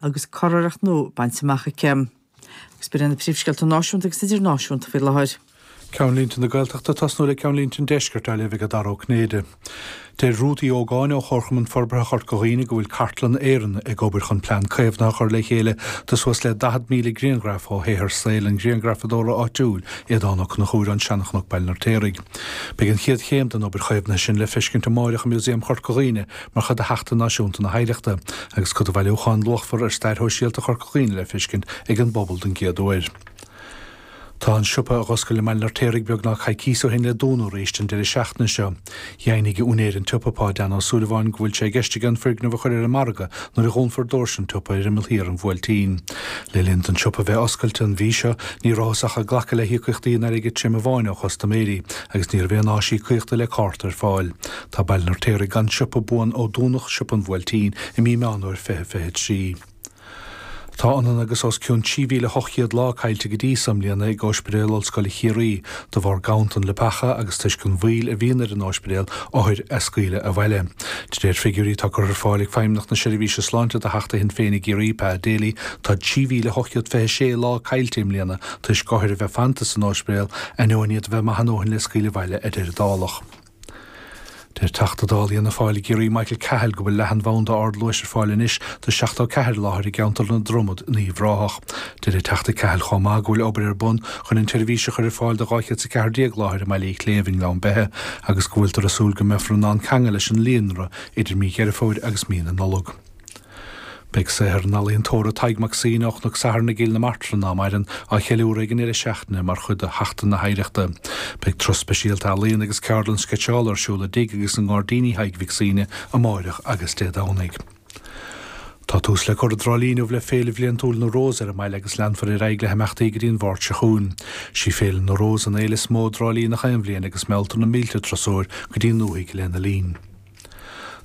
agus curiarracht nua bainte amach aici. Agus b'iad na príomhscéalta náisiúnta agus idirnáisiúnta faoi láthair. Ceannlínte na Gaeltachta ag tosnú le ceannlínte an Deiscirt á léamh ag Dara Ó Cinnéide. Deir Ruth Uí Ógáin ó Chomharchumann Forbartha Chorca Dhuibhne go bhfuil Cartlann Éireann ag obair chun plean caomhnaithe a chur le chéile do suas le 40,000 grianghraf ó shaothar saoil an ghrianghrafadóra áitiúil Aodhán Ó Conchúir ón Seanchnoc Baile an Fheirtéaraigh. Beidh an chéad chéim den obair chaomhnaithe sin le feiscint amáireach i Músaem Chorca Dhuibhne, mar chuid de Sheachtain Náisiúnta na hOidhreachta, agus cuid de bhailiúchán luachmhar ar stair shóisialta Chorca Dhuibhne le feiscint ag an bpobal don gcéad uair. Tá an siopa a dh'oscail i mBaile an Fheirtéaraigh beagnach coicíos ó shin le dúnadh arís an deireadh seachtaine seo. Dheimhnigh úinéir an tsiopa, Pa Dan Ó Súilleabháin, go bhfuil sé i gceist aige an foirgneamh a chur ar an margadh nuair a dhúnfar doirse an tsiopa ar imeall thiar an Bhuailtín. Le linn don tsiopa bheith oscailte an mhí seo ní rabhthas ach ag glacadh le híocaíochtaí in airgead tirim amháin ó chustaiméirí agus ní raibh aon áis íocaíochta le cárta ar fáil. Tá Baile an Fheirtéaraigh gan siopa buan ó dúnadh Siopa an Bhuailtín i mí Meán Fhómhair 2023. Tá ionann agus os cionn 3,800 lá caillte go dtí so i mbliana ag Óispidéal Ollscoile Chiarraí de bharr ganntan leapacha agus toisc an mhoill a bhíonn ar an óispidéal othair a scaoileadh abhaile. De réir figiúirí atá curtha ar fáil ag Feidhmeannacht na Seirbhíse Sláinte do Theachta Shinn Féin i gCiarraí, Pa Daly, tá 3,826 lá caillte i mbliana toisc othair a bheith fanta san óispidéal ainneoin iad a bheith maith a ndóthain le scaoileadh abhaile, a deir an Dálach. Deir Teachta Dála Fhianna Fáil i gCiarraí Michael Cahill go bhfuil leathanbhanda ardluais ar fáil anois do 74 láthair i gceantar na Dromoda in Uíbh Ráthach. Deir an Teachta Cahill chomh maith go bhfuil obair ar bun chun an tseirbhís a chur ar fáil do 214 láthair i mBaile Uí Chléibh i nGleann Beithe agus go bhfuiltear ag súil go mbeifear in ann ceangal leis an líonra idir mí Dheireadh Fómhair agus mí na Nollag. Beidh saothar an ealaíontóra Tadhg Mac Suibhne, ó Chnoc Sathairn i gCill na Martra nach maireann á cheiliúradh ag an ndeireadh seachtaine mar chuid de Sheachtain na hOidhreachta. Beidh turas speisialta ealaíon agus ceardlann sceitseála ar siúl i dtigh agus i ngairdíní Thaidhg Mhic Suibhne amáireach agus Dé Domhnaigh. Tá tús le cur i dTrá Lí inniu le Féile Bhliantúil na Rós ar an mbaile agus leanfar ar aghaidh le himeachtaí go dtí an Mháirt seo chugainn. Sí Féile na Rós an fhéile is mó i dTrá Lí nach aon bhliain agus mealltar na mílte turasóir go dtí an ndúthaigh lena linn.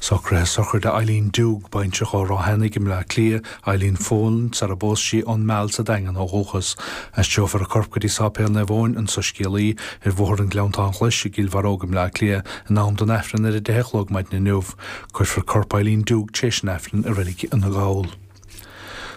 Socruithe sochraide Eileen Doogue, baintreach ó Ráth Eanaigh i mBleá Cliath, Eileen Folan, sara bpós sí ón Meal sa Daingean ó dhúchas. Aistreofar a corp go dtí Sáipéal Naomh Eoin, an Soiscéalaí, ar Bhóthar an Ghleanntáin Ghlais i gCill Bharróg i mBleá Cliath in am don Aifreann ar a deich a chlog maidin inniu. Cuirfear corp Eileen Doogue tréis an Aifrinn i Reilig Fhine Gall.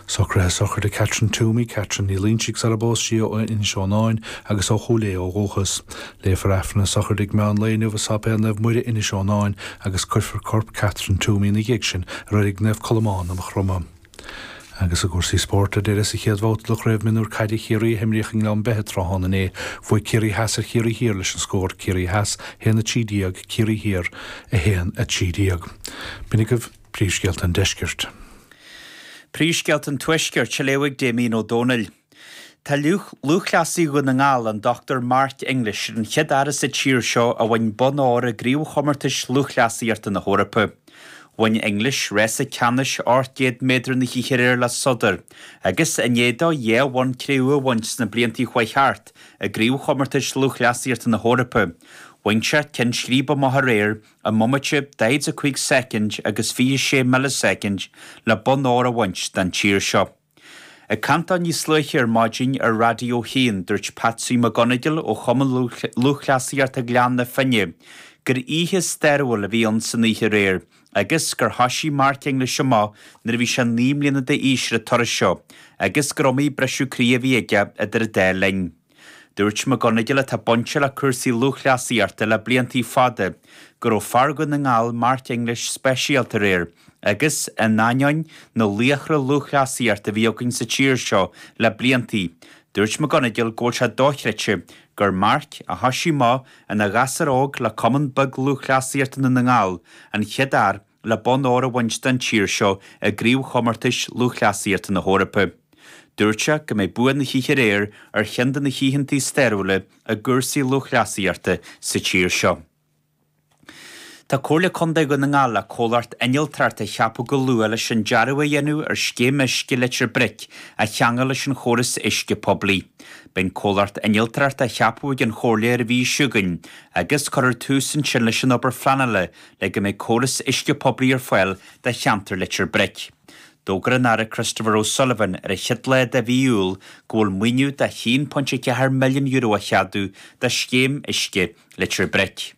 Socruithe sochraide Catherine Twomey, Catherine Ní Loingsigh sara bpós sí ó Inis Eonáin agus ó Chúil Aodha ó dhúchas. Léifear Aifreann na sochraide ag meán lae inniu i Sáipéal Naomh Muire, Inis Eonáin agus cuirfear corp Catherine Twomey ina dhiaidh sin i reilig Naomh Colmán i Maigh Chromtha. Agus i gcúrsaí spóirt, ar deireadh, sa chéad bhabhta de Chraobh Mionúr Caide Chiarraí a himríodh i nGleann Beithe tráthnóna inné, bhuaidh Ciarraí Theas ar Chiarraí Thiar leis an scór, Ciarraí Theas 1 13, Ciarraí Thiar 1 13. B'in agaibh. Príomhscéalta an Deiscirt. Príomhscéalta an Tuaiscirt, á léamh ag Damien Ó Dónaill. Tá lúthchleasaí Dhún na nGall, an Dr Mark English, ar an chéad fhear sa tír seo a bhain bonn óir i gCraobhchomórtais Lúthchleasaíochta na hEorpa. Bhain English rása ceannais ocht gcéad méadar na hoíche aréir le sodar agus, i ndiaidh dó dhá bhonn Cré-umha a bhaint sna bliantaí a chuaigh thart i gCraobhchomórtais Lúthchleasaíochta na hEorpa, bhain sé ceann scríbe amach aréir i i mbomaite daichead a 5 soicind agus 26 millisoicind le bonn óir a bhaint don tír seo. Ag caint dó níos luaithe ar maidin ar Raidió 1 dúirt Patsaí McGonagle ó Chumann Lúthchleasaíochta Ghleann na Finne gur oíche stairiúil a bhí ann san oíche aréir agus gur thoisigh Mark English amach nuair a bhí sé naoi mbliana d'aois ar an turas seo agus gur iomaí briseadh croí a bhí aige idir an dá linn. Dúirt McGonagle atá bainte le cúrsaí lúthchleasaíochta le bliantaí fada go raibh fear Dhún na nGall, Mark English, speisialta aréir agus, in ainneoin na laochra lúthchleasaíochta a bhí againn sa tír seo le bliantaí, dúirt McGonagle go bhfuil sé dochreidte gur Mark, a thoisigh amach ina ghasúr óg le cumann beag lúthchleasaíochta i nDún na nGall, an chéad fhear le bonn óir a bhaint don tír seo i gCraobhchomórtais Lúthchleasaíochta na hEorpa. Dúirt sé go mbeidh bua na hoíche aréir ar cheann de na hoícheantaí stairiúla i gcúrsaí lúthchleasaíochta sa tír seo. Tá Comhairle Contae Dhún na nGall le comhlacht innealtóireachta a cheapadh go luath leis an dearadh a dhéanamh ar scéim uisce Leitir Bric a cheangal leis an chóras uisce poiblí. Beidh an comhlacht innealtóireachta á cheapadh ag an Chomhairle ar an mhí seo chugainn agus cuirfear tús ansin leis an obair phleanála le go mbeidh córas uisce poiblí ar fáil do cheantar Leitir Bric. D'fhógair an Aire Christopher O Sullivan ar an chéad lá de mhí Iúil go bhfuil maoiniú de €1.4 milliún á cheadú do scéim uisce Leitir Bric.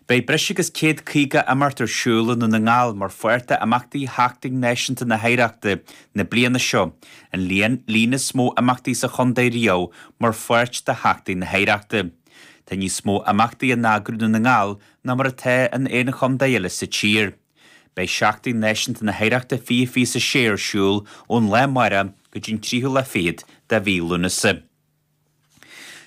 Beidh breis agus 150 imeacht ar siúl i nDún na nGall mar pháirt d'imeachtaí Sheachtain Náisiúnta na hOidhreachta na bliana seo, an líon is mó imeachtaí sa chontae riamh mar pháirt de Sheachtain na hOidhreachta. Tá níos mó imeachtaí á n-eagrú i nDún na nGall ná mar atá in aon chontae eile sa tír. Beidh Seachtain Náisiúnta na hOidhreachta 2026 ar siúl ón lá amárach go dtí'n tríthú lá fichead de mhí Lúnasa.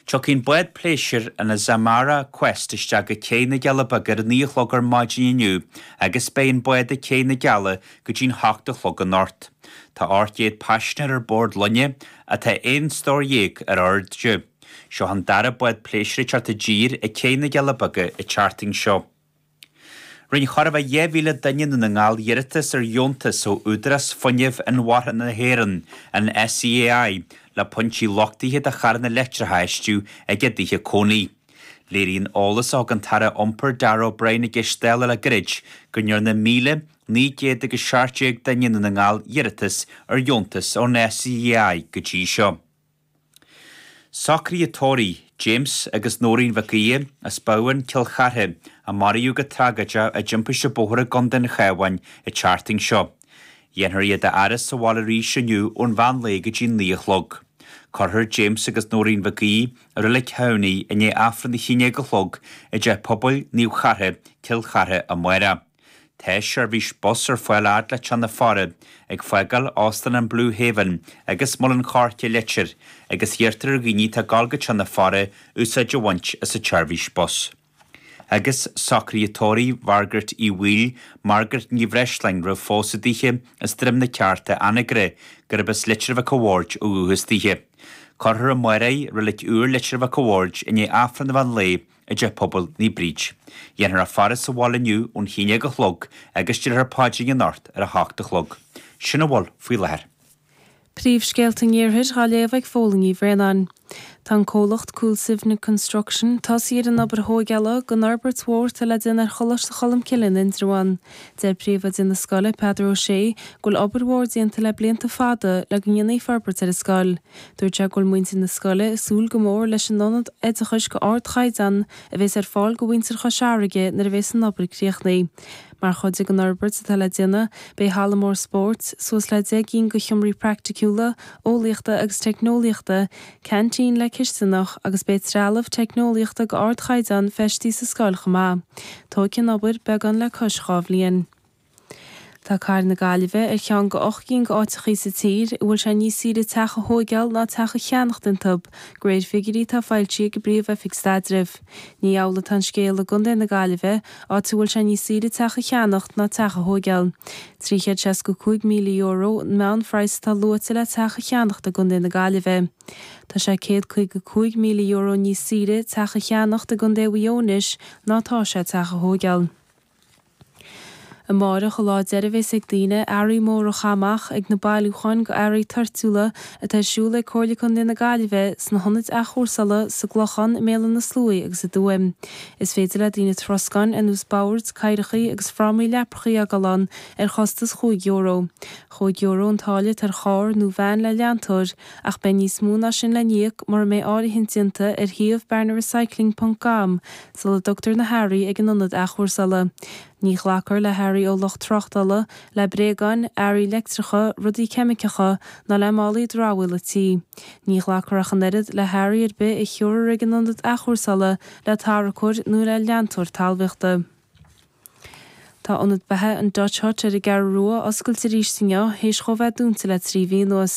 Tiocfaidh an bád pléisir an Azamara Quest isteach go Céidh na gCealla Beaga ar a naoi a chlog ar maidin inniu agus beidh an bád ag Céidh na gCealla go dtí'n hocht a chlog anocht. Tá 800 paisinéir ar bord loinge atá aon stór déag ar airde. Seo an dara bád pléisire teacht i dtír ag céidh na gCealla Beaga an tseachtain seo. Rinne chóir a bheith dhá mhíle duine i nDún na nGall iarratas ar dheontas ó Údarás Fuinnimh Inmharthana na hÉireann, an SEAI, le pointí luchtaithe do charranna leictreacha a fheistiú ag a dtithe cónaí. Léiríonn eolas a thug an tAire Iompair Darragh O'Brien i gceist Dála le gairid go ndearna míle, naoi gcéad agus seacht déag duine i nDún na nGall iarratas ar dheontas ón SEAI go dtí seo. Socruithe tórraimh James agus Nóirín Mhic Aodha as Bábhún, Cill Chartha, a maraíodh go tragóideach i dtimpiste bóthair i gContae an Chabháin, an tseachtain seo. Dhéanfar iad a fhaire sa bhaile arís inniu ón mheán lae go dtí naoi a chlog. Cuirfear James agus Nóirín Mhic Aodha i Reilig Thamhnaigh i ndiaidh Aifreann a haon déag a chlog i dTeach Pobail Naomh Chartha, Cill Chartha, amárach. Tá seirbhís bus ar fáil fhad le teach na faire, ag fágáil Óstán an Blue Haven agus Muileann Coirce Leitir, agus iarrtar ar dhaoine atá ag dul go teach na faire úsáid a bhaint as an tseirbhís bus. Agus socruithe tórraimh Mhargaret Uí Bhaoill, Margaret Ní Bhreisleáin, roimh phósadh daoithe, as Droim na Ceárta, Anagaire, gurb as Leitir Mhic a' Bhaird ó dhúchas daoithe. Cuirfear í amárach i Reilig Úr Leitir Mhic a' Bhaird, i ndiaidh Aifreann an mheán lae i dTeach Pobail Naomh Bríd. Dhéanfar a faire sa bhaile inniu ón haon déag a chlog agus déarfar paidrín anocht ar a hocht a chlog. Sin a bhfuil faoi láthair. Príomhscéalta an Iarthair dhá léamh ag Fódhla Ní Bhraonáin. Tá an comhlacht Coolsivna Construction tosaithe ar an obair thóigeála den fhorbairt mhór atá le déanamh ar Choláiste Cholmcille in Indreabhán. Deir Príomhoide na scoile, Peadar Ó Sé, go bhfuil obair mhór déanta le blianta fada le go ndéanfaí forbairt ar an scoil. Dúirt sé go bhfuil muintir na scoile ag súil go mór leis an ionad oideachais go ardchaighdeán a bhéas ar fáil go mhuintir Chois Fharraige nuair a bhéas an obair críochnaí. Mar chuid den fhorbairt atá le déanamh, beidh halla mór spóirt, suas le 10 gcinn go sheomraí praicticiúla, eolaíochta agus teicneolaíochta, ceaintín le cisteanach agus beidh trealamh teicneolaíochta go ardchaighdeán feistí sa scoil chomh maith. Tóigfidh an obair beagán le cois dhá bhliain. Tá cathair na Gaillimhe ar cheann go ocht gcinn go áiteachaí sa tír a bhfuil sé níos saoire teach a thóigeáil ná teach a cheannacht iontub, go réir figiúirí atá foilsí ag an bPríomh-Oifig Staidrimh. Ní amhlaidh atá an scéal i gContae na Gaillimhe, áit a bhfuil sé níos saoire teach a cheannacht ná teach a thóigeáil. €365,000 an meánphraghas atá luaite le teach a cheannacht i gContae na Gaillimhe. Tá sé €155,000 níos saoire teach a cheannacht i gContae Mhuigh Eo anois ná tá sé teach a thóigeáil. Amáireach a' lá deiridh bhéas ag daoine earraí móra a chaitheamh amach ag na bailiúcháin go earraí toirtiúla atá ar siúl ag Comhairle Condae na Gaillimhe, sna hionaid athchúrsála, sa gClochán, i mBéal an na Sluaighe agus i dTuaim. Is féidir le daoine troscáin ar nós boird, cathaoireachaí agus frámaí leaprachaí a fhágáil ann ar chostas chúig euro. Chúig euro an táille atá ar charr nó veain le leantóir, ach beidh níos mó ná sin le n-íoc mura mbeidh áirithint déanta ar shuíomh barnarecycling.com, sula dtugtar na hearraí ag an Ionad Athchúrsála. Ní ghlacfar le hearraí ó lucht tráchtála, le bréagáin, earraí leictreacha, rudaí ceimiceacha ná le málaí dramhaíola tí. Ní ghlacfar ach an oiread le hearraí ar bith a thabharfar ag an Ionad Athchúrsála le tarracóir nó le leantóir talmhaíochta. Tá Ionad Beatha an Dutch Hut ar an gCeathrú Rua oscailte arís inniu théis dhó a bheith dúnta le trí mhí anuas.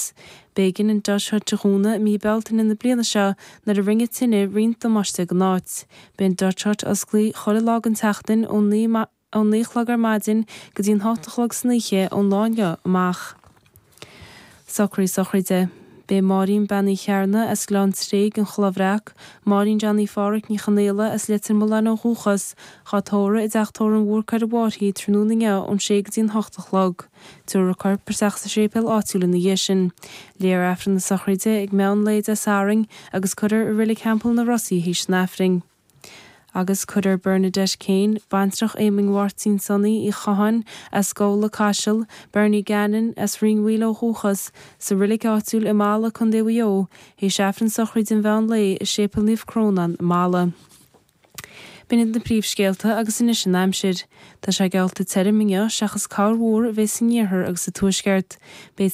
B'éigin an Dutch Hut a dhúnadh i mí Bealtaine na bliana seo nuair a rinne tine roinnt damáiste dhon áit. Beidh an Dutch Hut oscailte chuile lá den tseachtain ón naoi a chlog ar maidin go dtí an hocht a chlog san oíche ón lá inniu amach. Socruithe sochraide. Beidh Máirín Bean Uí Chearna as Gleann Tréig, an Chloch Bhreac, Máirín Jean Phádhraic Ní Chonaola as Leitir Mealláin ó dhúchas, dhá tórramh i dteach tórraimh Marcus Mháirtín tráthnóna inniu ón sé go dtí an hocht a chlog. Tabharfar a corp isteach sa séipéal áitiúil ina dhiaidh sin. Léifear Aifreann na sochraide ag meán lae Dé Sathairn agus cuirfear i Reilig Theampall na Rosaí théis an Aifrinn. Agus cuirfear Bernadette Kane, baintreach Éamoinn Mháirtín Sonaí Uí Chatháin as Gabhla Caiseal, Bernie Gannon as Rinn Mhaoil ó dhúchas, sa Reilig áitiúil i mBalla, Co Mhaigh Eo, théis Aifreann sochraide an mheán lae i Séipéal Naomh Crónán i mBalla. B'in iad na príomhscéalta agus anois an aimsir. Tá sé geallta tirim inniu seachas corrmhúr a bheidh san iarthar agus sa tuaisceart. Beidh